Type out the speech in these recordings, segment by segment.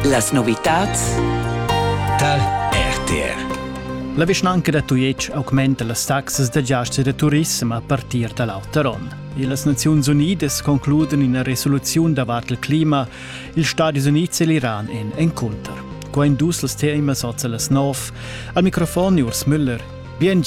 Las novitads tal RTR La vischnanca da Tujetsch augmenta las taxas da giastar da turissem a partir da l'auter onn. E las Naziuns Unidas concludan ina resoluziun davart il clima. Ils Stadis Unids e l'Iran èn encunter. Qua in dus els temas oz las nov. Al microfon Urs Müller. Bien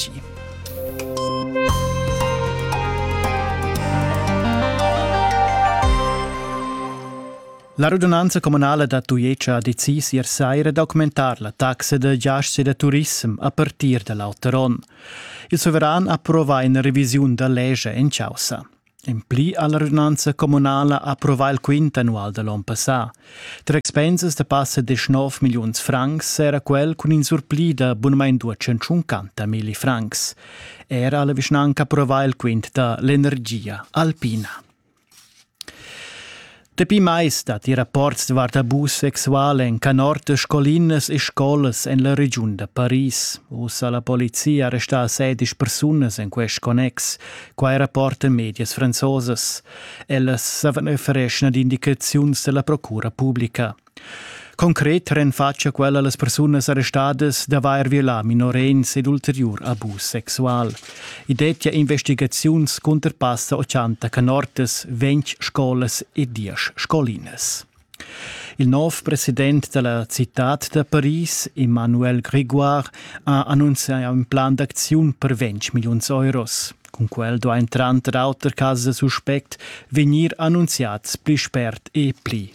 La radunanza communala da Tujetsch ha decis ier saira d'augmentar la taxa da giasts e da turissem a partir da l'auter onn. Il suveran approvà ina revisiun da legge en caussa. En pli ha la radunanza communala approvà il quint annual da l'onn passà. Tar expensas da passa 19 milliuns francs era quel cun in surpli da bunamain 250 milli francs. Era ha la vischnanca approvà il quint da l'energia alpina. Dapi mais datti rapports davart abus sexual en canortas, scolinas e scolas en la regiun da Paris. Uss ha la polizia arrestà sedisch persunas en quest connex. Quai rapportan medias franzosas. Ellas savan offerir indicaziuns da la procura publica. Concret renfatscha quella las persunas arrestadas d'avair violà minorenns ed ulteriur abus sexual. I dettia investigaziuns cunter passa 80 canortas, 20 scolas e 10 scolinas. Il nov president della cittad da Paris, Emmanuel Grégoire, ha annunziato un plan d'aczione per 20 milioni euros. Con quel do ein tranter auter casi suspect vegnir annunziats pli spert e pli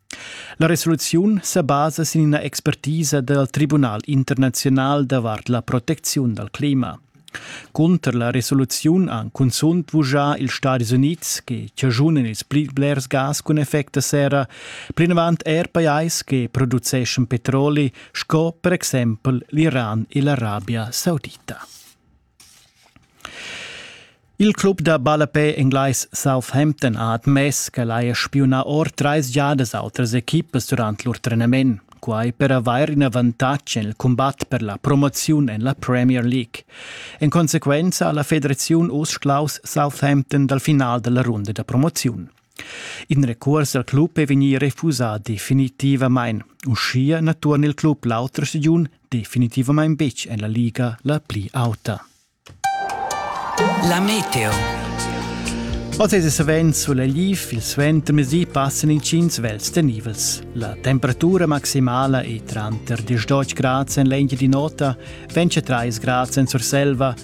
La resoluziun sa basa sin ina expertisa dal Tribunal internaziunal davart la protecziun dal clima. Cunter la resoluziun han cunzunt vuschà ils Stadis Unids che chaschunan ils pli blers gas cun effect da serra, plinavant er pajais che produceschan petroli sco per exempel l'Iran e l'Arabia Saudita. Il club da ballapè englais Southampton ha admess ch'el haja spiunà or trais giadas autras equipas durant lur trenament, quai per avair in avantatg en il cumbat per la promoziun en la Premier League. En consequenza ha la federaziun uss schlaus Southampton dal final da la runda da promoziun. In recuors dal club è vegnì refusà definitivamain. Uschia na turna il club l'autra stagiun definitivamain betg en la liga la pli auta. La meteo. Oz è savens sulegliv, il suentermezdi passan intgins vels tenivels. La temperatura maximala è tranter 10 grad en l'engia di nota, 23 grad en Surselva,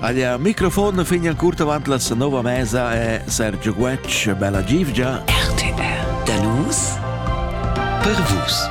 Aglia microfon fin an curt avant la nova mesa è Sergio Guetsch, bella givgia. RTR, da nus, per vus.